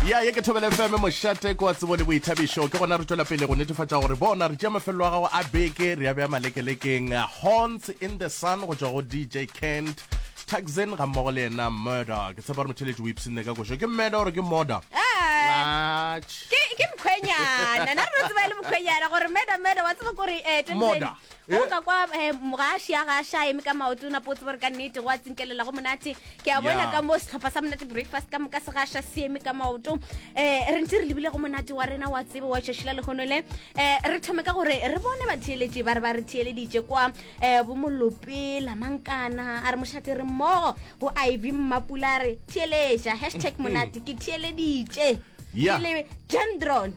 ya ye ke thobele fm mošate ko wa tsebo le boithabišo ke gona re tšwela pele go netefatša gore bona re tšea mafelelo a gago a beke re ya beya malekelekeng horns in the sun go tšwa go dj kent taxin ga mmogo le yena murder ke tshepa gore motheletši o ipshinne ka košo ke mmeda gore ke moda ah, ke mkhwenyana na re tseba e le mkhwenyana gore meda meda wa tseba kore eh, moda Ge o ka kwa eh, ga a šia ga a ša eme ka maoto o napo o tseba gore ka nnete go a tsinkelela go monate ke a bona Yeah. ka mo setlhopha sa monate breakfast ka moka se ga a ša se eme ka maoto um re ntse re lebile go monate wa rena wa tsebe wa tšešila lehono le um re thome ka gore re bone batheeletši ba re ba re theeleditše kwa um bomolope lamankana a re mošate re mmogo go iv mmapula a re theeletša hashtag monate ke theeleditše Yeah. ke le gendron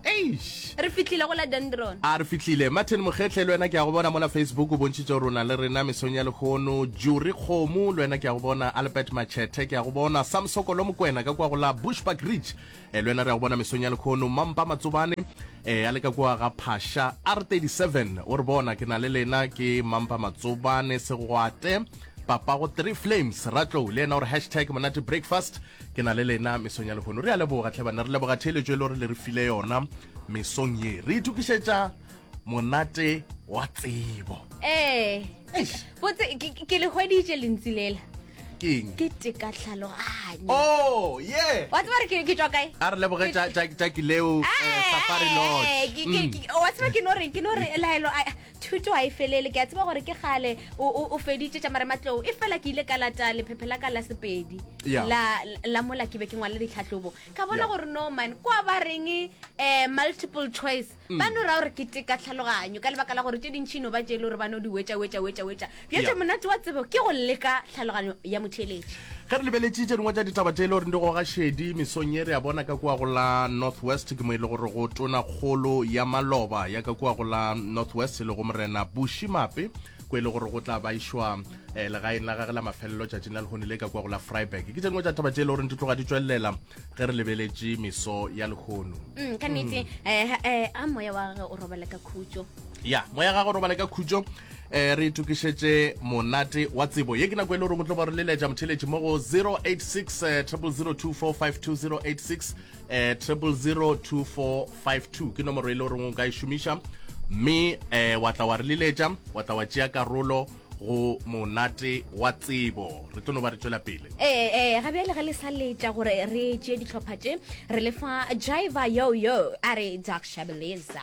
eish re fitlhile go la dendron a re fitlhile martin mokgetlhe le wena ke ya go bona mola facebook o bontšhitse gore o na le rena mesong ya lekgono juri kgomo le wena ke ya go bona albert machethe ke ya go bona samsokolo mokwena ka kwa go la bushback ridge e le wena re ya go bona mesong ya lekgono mampa matsobane e a le ka kwa ga phasha r 37 o re bona ke na le lena ke mampa matsobane segwate papago three flames ratlou le yena gore hashtag monate breakfast ke na le lena mesong ya lehono re a leboga tlhe banna re leboga theeletso e le gore le re file yona mesong ye re ithukišetša monate wa tsebo ee botse ke le hweditše lentsi lela keng ke teka tlhaloganyo oh yeah wa tseba re ke ke tswa kae a re leboge tša tša tša kileo eh, eh, safari lodge eh, wa tseba ke no re ke no re laelo thuto ga e felele ke a tseba gore ke gale o feditše tša marematlou e fela ke ile ka lata lephephe la ka la sepedi la mola ke be ke ngwale ditlhatlhobo ka bona gore norman kwa ba reng um multiple choice mm. ba no ra gore ke teka tlhaloganyo ka lebaka la gore tše dintšhi no ba tšele gore ba no di wetša wetša wetša wetša bjatša monate wa tsebo ke go leka tlhaloganyo ya motheeletši ge re lebeletše tše dingwe tša ditaba tše e le gore di goga šedi mesong ye re a bona ka kua go la north west ke mo e le gore go tona kgolo ya maloba ya ka kua go la north west e le go morena bushi mape ko e le gore go tla baišwa um eh, legaeng la gage la mafelelo tšatšing la lehone le ka kua go la freiburg ke tše dingwe tša taba tše e le goreng di tloga di tswelela ge re lebeletše meso ya lehono mm, ka nnete um a moya wa gage o robala ka khutso ya moya gagwe robala ka khutso um re itokišetše monate wa tsebo ye ke nako e le goreng o tlo ba re leletša motheletši mo go 086 0002452 086 0002452 ke nomoro e le goreng o ka e šomiša mme um wa tla wa re leletša wa tla wa tšea karolo go monate wa tsebo re tlo no ba re tswela pele ee ee ga bjale ge le sa letša gore re tšee ditlhopha tše re lefa jaiva yo yo a re dakshabeleza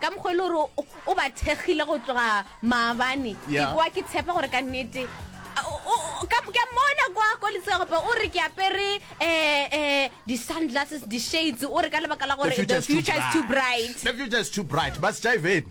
Ka mokgwa e le gore o ba thekgile go tloga maabane, ke kwa ke tshepa gore ka nnete ke a mmona kwa ko letsegope o re ke apere um di-sunglasses di-shades o re ka lebaka la gore the future is too bright the future is too bright ba sejiveni